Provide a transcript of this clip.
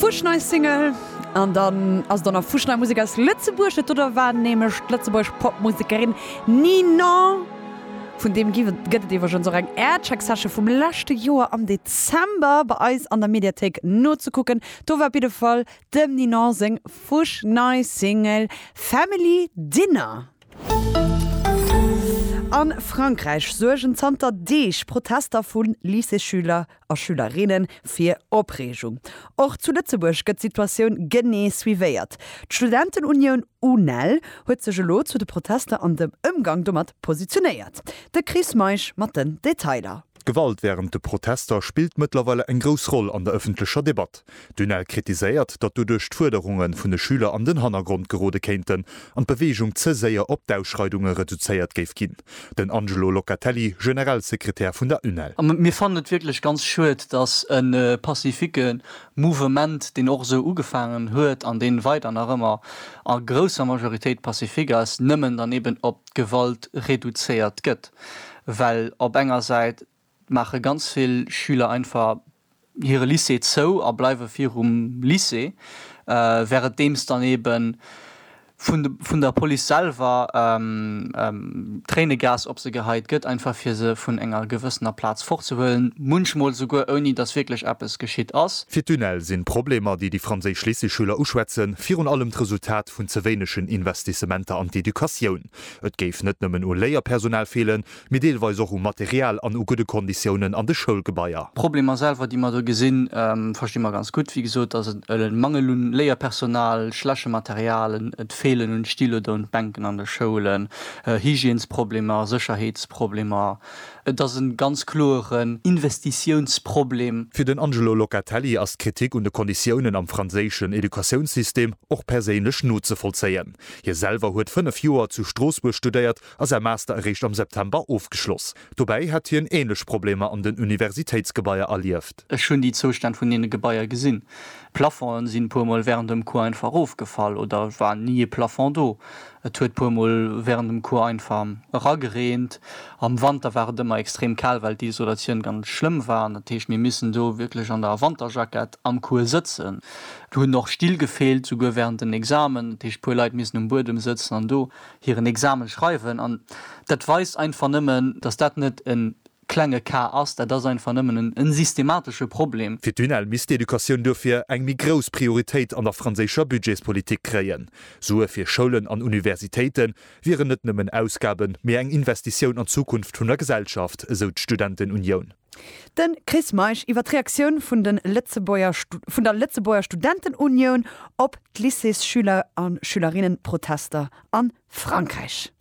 Fusch nei Single an dann ass et och nach fusch nei Musek aus Lëtzebuerg. Dat dote war nämlech d'Lëtzebuergesch Popmusekerin Ninon. Vun deem gi gëtt et iwweregens och eng Aircheck-Session vum leschte Joer am Dezember bei eis an der Mediathéik nozekucken. Do war op jidde Fall dem Ninon seng fusch nei Single Family Dinner. A Frankräich suergen zanter Deeg Protester vu Lycéeschüler a Schülerinne fir Opreegung. Och zu Lëtzebuerg gëtt d'Situatioun genee suivéiert. D'Studentenunioun UNEL huet sech elo zu de Protester an dem Ëmgang domat positionéiert. De Chris Meisch mat den Detailer. D'Gewalt wärend de Protester spillt mëttlerweile eng grouss Roll an der ëffentlecher Debatt. D'UNEL kritiséiert, datt doduerch d'Fuerderunge vun de Schüler an den Hannergrond gerode kéinten an d'Beweegung ze séier op d'Ausschreidunge reduzéiert géif ginn. Den Angelo Locatelli, Generalsekretär vun der UNEL. Mir fannen et wierklech ganz schued, datt e pacifique Mouvement, deen och esou ugefaangen huet an deen weider nach ëmmer a grousser Majoritéit pacifique ass, nëmmen dann eben op d'Gewalt reduzéiert gëtt, well op enger Säit maache ganz vill Schüler einfach hire Lycée zou a bleiwe virum Lycée, währendeems dann eebe vun der Police selwer Tréinegas op se geheit gëtt, einfach fir se vun enger gewëssener Plaz fortzehuelen, munchmol esouguer ouni datt wierklech eppes geschitt ass. Fir d'UNEL sinn d'Problemer, déi déi franséisch Lycéeschüler uschwätzen, virun allem d'Resultat vun ze wéinegen Investissementer an d'Educatioun. Et géif net nëmmen u Léierpersonal feelen, mee deelweis och u Material an u gudde Konditiounen an de Schoulgebaier. D'Problemer selwer, déi mer do gesinn, versti mer ganz gutt. Wéi gesot ass et e Mangel u Léierpersonal, schleche Material, et feelen un Stylo do, un Bänken an de Schoulen, Hygiènesproblemer, Sécherheetsproblemer. Et ass e ganz kloeren Investitiounsproblem. Fir den Angelo Locatelli ass d'Kritik un de Konditiounen am franséischen Educatiounssystem och perséinlech nozevollzéien. Hie selwer huet fënnef Joer zu Stroossbuerg studéiert a säi Master eréischt am September ofgeschloss. Dobäi hätt hien änlech Problemer an den Universitéitsgebaier erlieft. Ech hunn déi Zoustänn vun deene Gebaier gesinn. D'Plafongen sinn e puer Mol wärend dem Cours einfach erofgefall oder et war ni e Plafond do. Et huet e puer Mol wärend dem Cours einfach eragereent. Am Wanter war et ëmmer extrem kal, well d'Isolatioun ganz schlëmm war. An dat heescht, mir missen do wierklech an der Wanterjackett am Cours sëtzen. Do hunn och Still gefeelt, souguer wärend den Examen. Dat heescht, e puer Leit missen um Buedem sëtzen an do hiren Examen schreiwen an dat weist einfach nëmmen, dass dat net e klenge Cas ass, dat ass einfach nëmmen e systematesche Problem. Fir d'UNEL misst d'Educatioun duerfir eng méi grouss Prioritéit an der franséischer Budgetspolitik kréien. Sue fir Schoulen an Universitéite wieren net nëmmen Ausgaben, mee eng Investitioun an d'Zukunft vun der Gesellschaft, esou d'Studentenunioun. De Chris Meisch iwwer d'Reaktioun vun de Lëtzebuerger vun der Lëtzebuerger Studentenunioun op d'Lycéesschüler a Schülerinnen-Protester a Frankräich.